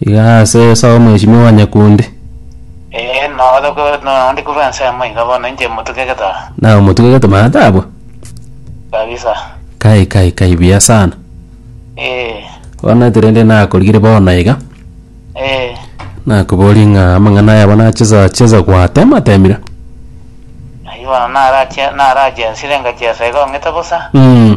Iga ase Esau omwechimi o Wanyakundi. Ee, noro ko noro ndi korwa ense emo iga bono inche motuke getaa. Naye omotuke getomana tabwa. Kabisa. Kai kai kai buya sana. Ee. Bono ete rende nakorigire bono iga. Ee. Nakoborie ng'a amang'ana ayabo nachesa chesa gwatema temire. Ayio bono narache narache nsire ngachiesa iga ong'ete bosa. Mm.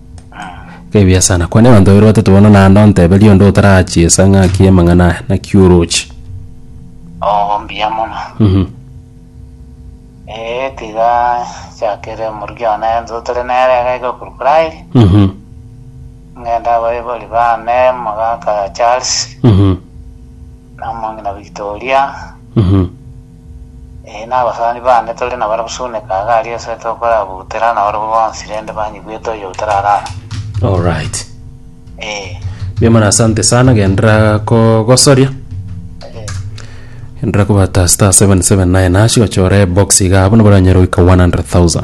Ebiya sana. Kwane abanto babere batato bono naende onteberie onde otarachiesa ng'aki amang'ana aya, naki oroche. Oo mbuya mono. Mhm. Eeh tiga nchakere omoruki one ense otari nere egeka ekorwa Pride, Mhm. ng'ende abaibori bane omogaka Charles, Mhm. na omong'ina Victoria, Mhm. Ee, nabasani bane, tore nabarabwo sune kaga aria ase tokorabuterana nabarabwo bonsi rende banyigwete oyo otararara. All right. Ee, Mbuya mono asante sana gendera kogosoria ee, gendera kobata star 779 hash gochora ebox iga abwo nabo oranyare goika 100000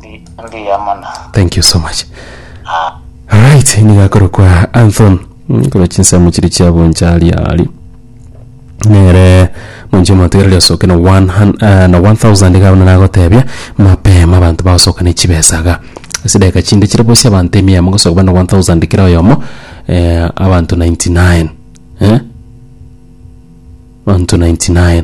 mbuya mono. thank you so much right niga akorokwa anthon Mm, korwa chinsemo chiri chiaboncha ali ali nere monche motegereri osoke na 100, eh, na 1000 gabona nagotebia mapema abanto bagosoka ne chibesaga ase daika chinde chire bosi abanto emia mogosoka bana 1000 kera oyomo eh, abanto 99 eh? abanto 99